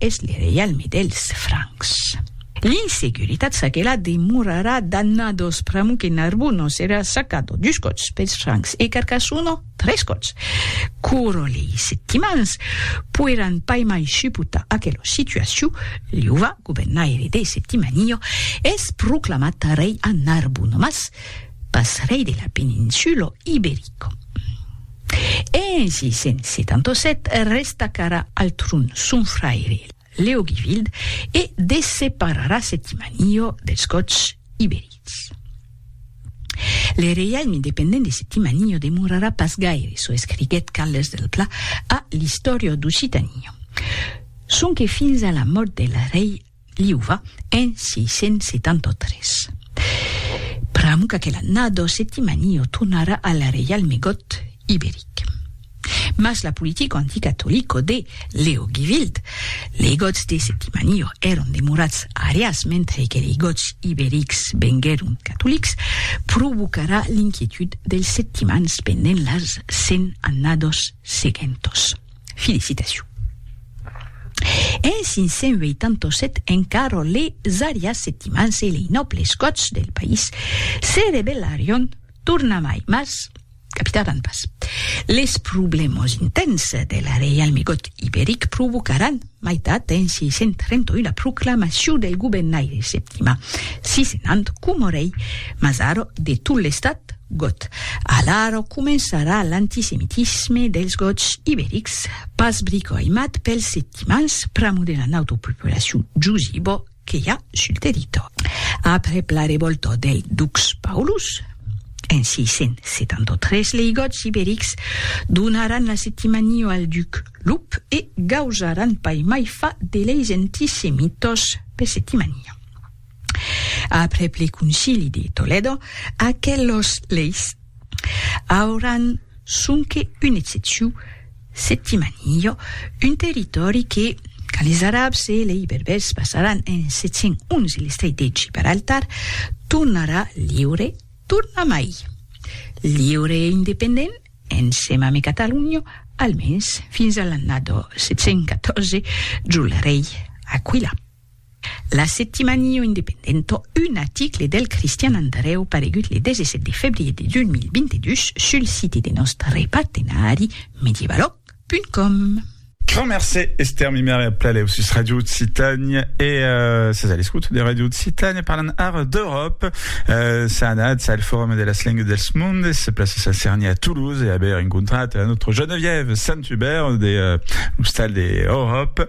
Es le reialme dels Francs. L'insecuritat çaquelà demorarà dannados pr'amor que Narbuno serà çacado dus còps pels Francs e Carcassono tres còps. Coro lei Septimans poiràn pas mai suportar aquela situacion, Liuva, governaire de Septimanio, es proclamat rei a Narbuno mas pas rei de la peninsula Iberico. E ainsi, cent setanta set, resta cara al tron son fraire Leogivild e dessepararà Septimaniò dels Gots iberics. Le reialme independent de Septimaniò demorarà pas gaire, çò escriguèt Carles del Pla a l'Istòria d'Occitania. Sonque fins a la mòrt del rei Liuva en 673. Pr'amor qu'aquela nado Septimanio tornara al reialme got iberic. Mas la politica anticatolico de Leo Givild, lei gots de Septimanio èron demorats arias mentre que lei gots iberics venguèron catolics, provocarà l'inquietud dels septimans pendent las cent annados seguentos. Felicitacion. En 587 en Caro les Arias Septimans e lei nòbles gòts del país se rebellarion tornamai mas capitaran pas. Les problèmas intents del reialme gòt iberic provocaran, Maitat d'en 631 la proclamacion del gobennaire Septima, sisenant coma rei Mazaro de tot l'estat gòt. Alara començarà l'antisemitisme dels gòts iberics, pas bricoaimat pels septimans, pr'amor de la nautopopulacion Giusibo que i a sul territòri. Aprèp la revòlta del dux Paulus, en 673 lei Gòts iberics donaràn la Septimania al duc Lup e gausaràn pas mai fa de leis antisemítós per Septimania. Aprèp le Concili de Tolèdo, aquelos leis auràn sonque un excepciu Settimanillo, un territòri que, quand les Arabs e lei Berbèrs passaràn en 711 l'estret de Gibraltar, tornarà liure tornamai. Liure e independent, ensèm ame Catalunya, almens fins a l'annada 714, jo le rei Aquila. L'Assettimanio Independento, un aticle del Cristian Andrèu paregut le 17 de febrier de 2022 sul site de nòstre partenari medievaloc.com. Grand mercé Esther Mimère ep la lèu sus Radio Occitània e ses a l'escouta de Radio Occitània parlan ara d'Euròpa s'a anatz al Forum de las lengues dels mondes plaça Sant Cerni a Toulouse e aver encontrat notre Geneviève Saint-Hubert de l'Ostal de Euròpa